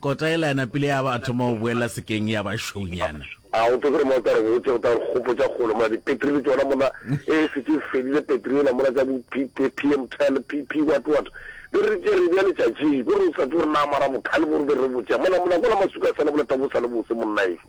Kota yela ya napile ya ba a thoma go boelela sekeng ya ba šounyana. A o tsebe gore mo o tla re botša, o tla re gopotša kgole mona, dipetri le tšona mona, e šetše e fedile petri yela mona tša bo P, PM tel, PP what what. Be re tšere e bea letšatšing, ko re o sa tsebe gore na mara bokhale bo re be re bo tšea mona, mona kwala masuka a sa le boleta bo sa le bose monnaeso.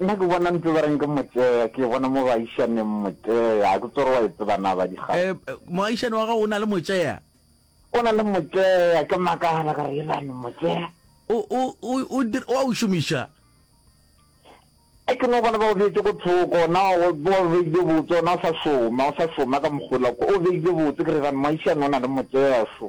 Nna ke bona ntse ba reng ke motea, ke e bona mo baišaneng, motea. Ha ke tsebe gore wa e tseba na, Badigaba. Eh, moagišane wa gago o na le motsea? O na le motsea, ke makala ka re elane motsea. O, o, o, o, dir- o a o šomiša? E ke no bona ba o beetse ko thoko, na o bo o beile botse, ona o sa šoma, o sa šoma ka mogola ko, o beile botse, ke re elane moagišane o na le motsea šo.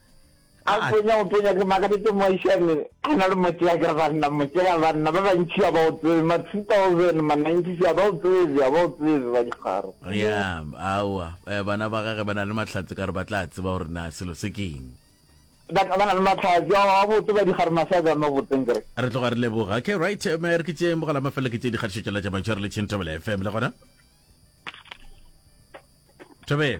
A tonya go tonya ke makaditse moaishane a na le motsea ka banna motsea banna ba bantši a ba o tsebe ma 2000 ma 90 a ba o tsebe a ba o tsebe ba dikgaro. Ya aowa eh, bana ba gage ba na le mahlatse ka re ba tla tseba gore na selo se ke eng. Ba ba na le mahlatse a a botse ba dikgaro ma sa jame botseng ke re. Re tloga re leboga okay right eh, me re ke tšeeng bogala mafelo ke tše dikgatišo tšela tša mantšhware le Chintobele FM le gona Tobele.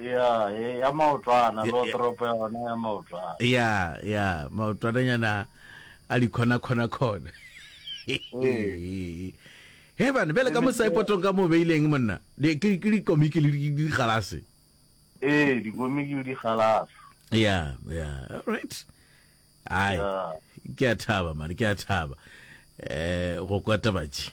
ya e- ya maotwana Ya- lo ya- toropo ya gona ya maotwana ya ya maotwananyana a di khona khona khona he bane bjale ka mosaepotong ka mo beileng monna Di- ke ke dikomiki le di- di galase ee dikomiki le digalasa ya ya alright ai Ya. ke a thaba mane ke a thaba eh go kwata batši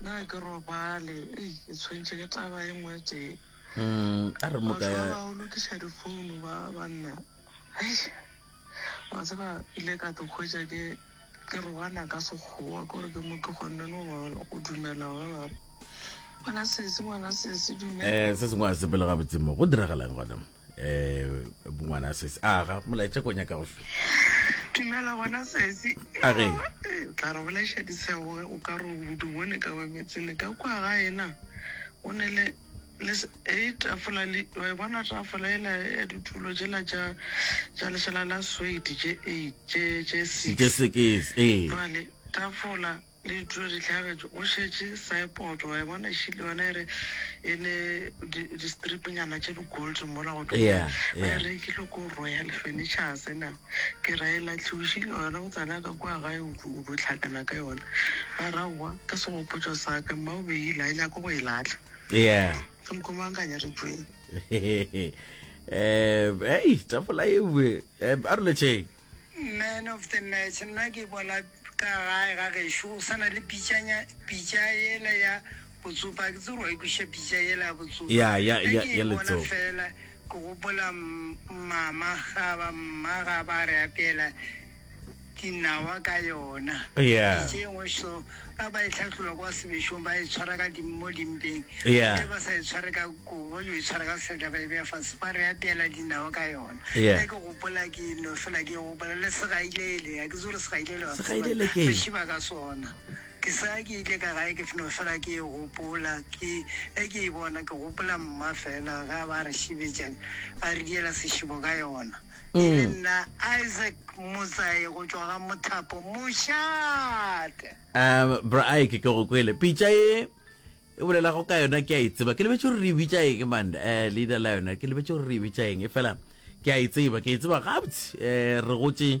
Na ke robale? Ei, ke tshwentšwe ke taba e nngwe tee. Mm, a re mo Batho ba ka ba o lokiša difounu ba banna. Hei, wa tseba ile ka te hwetša ke ke roana ka sekgowa kore ke mo tlogonne no ba o dumela ba ba re, ngwana sesi ngwana sesi dumela. eh se sengwe a sepele gabotse mo go diragalang gona um bongwana sese a ga molaetša ko nyaka go fe dumela gona sesi A re? Eh, o tla re bolaiša disego o ka re o di bone ka wemetse le ka kwa ga ena o ne le le s- e tafola le wa e bona tafola ela ya ditulo jela ja ja lešela la swedi je eight je je six sekese ee jale tafola Di tlo di hlagetše go šetše Saipod, wa e bona e šele yona e re e le di, di stripnyana tše di gold mola go Yeah, yeah. ba yeah. e rekile ko Royal Furnitures na ke ra e latlhiwšile yona go tsena ka kwa gae o tlo- o tlo tlhakana ka yona a rawa ka segopotšo sa ka mma o beile a nyako go e latlha yeah. ke nkomangkanya re tšweng um ei tafola ewe um a re letšeng Man of the match nna ke bona ka gae ga gešo go sana le pitšanya pitša yela ya botsopa ke tsere wa ikweša pitša yela ya botsopa ya ya ya ya letsopa fela ke gopola mama ga ba mma ga ba re apela dinawa ka yona yeah pitše engwe so Ba ba e hlahlola kwa sebešong ba e tshwara ka dim, mo dimpeng. Yeah. Ge ba sa e tshware ka kobo, yo e tshwara ka seatla ba e beya fase, ba re apeela dinawa ka yona. Yeah. Ge ke gopola ke no fela ke e gopola le segailele, a ke tsore segailele wa se tseba, Segailele ke re eng? šiba ka sona. Ke sa ke itle ka gae ke f- no fela ke e gopola ke ge ke e bona ke gopola mma fela ga ba re šibetša a re diela sešibo ka yona. e le nna Isaac Mosai go tšwa ga Mothapo Mošate. Um, bra Ike, ke go kwele. Pitša e e bolelago ka yona ke a e tseba. Ke lebetše gore re e bitša eng man, eh, leina la yona. Ke lebetše gore re e bitša eng. E fela ke a e tseba, ke e tseba gabotse. Eh, re gotše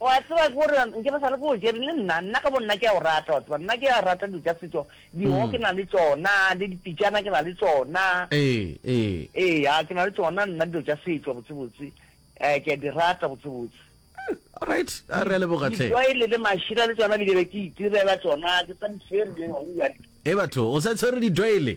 O a tseba ke gore nke re sa le ke o jere le nna, nna ka bo nna ke a o rata, wa tseba nna ke a rata dilo tša setšo, diho ke na le tšona le dipitšana ke na le tšona, Ee, ee. Eya ke na le tšona nna dilo tša setšo botsebotse, um ke a di rata botsebotse. Alright, a re a leboga hle. Ditwaele le mašira le tšona di ke be ke itirela tšona, ke sa di tshwere, ewa. E batho o sa tshwere ditwaele?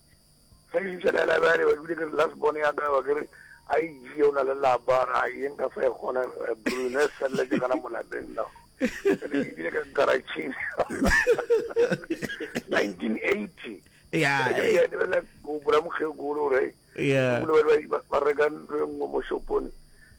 ge ke fitlha la library ba dule ke re last born ya ka ba ke re a e jee o na le lapa ra ye nka sa e kgona eh, brune sella ke gana molapeng no ebile ka garaching 1980 ya ya ne la go bula mokgekolo re ya ba reka ntlo e nngwe mo shopone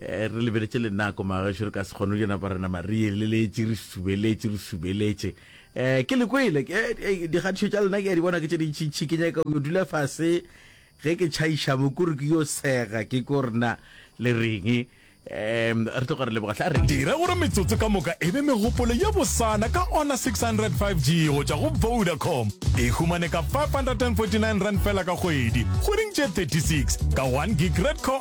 Eh, re lebeletše lenako magaešo re ka se kgone le napa rena marieleletše re subeletše re subeletše um ke le kwele eh, eh, dikgatišo tša lena ke ya di bona ke tše dintšintšhi ke nyaka yo dula fase ge ke tšhaiša mo kore ke yo sega ke ko rena le reng um re tloga re leboga tla reng dira gore metsotso ka moka e be megopolo ye bosana ka ona 600 5g go tšwa go vodacom e humane ka 549 rand fela ka kgwedi kgweding tše 36 ka 1 gig red co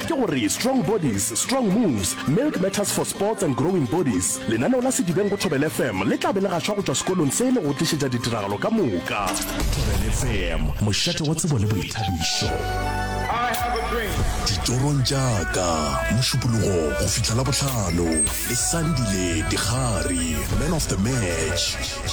Ke go re, Strong Bodies, Strong Moves, Milk Matters for Sports and Growing Bodies, lenaneo la Sedibeng go Thobela FM le tla be le gašwa go tšwa sekolong se le go tlišetša ditiragalo ka moka. Thobela FM, mošate wa tsebo le boithabišo. Ditorong tša ka, Mošupologo go fihla Labohlano, le Sandile Digari, Man of the Match.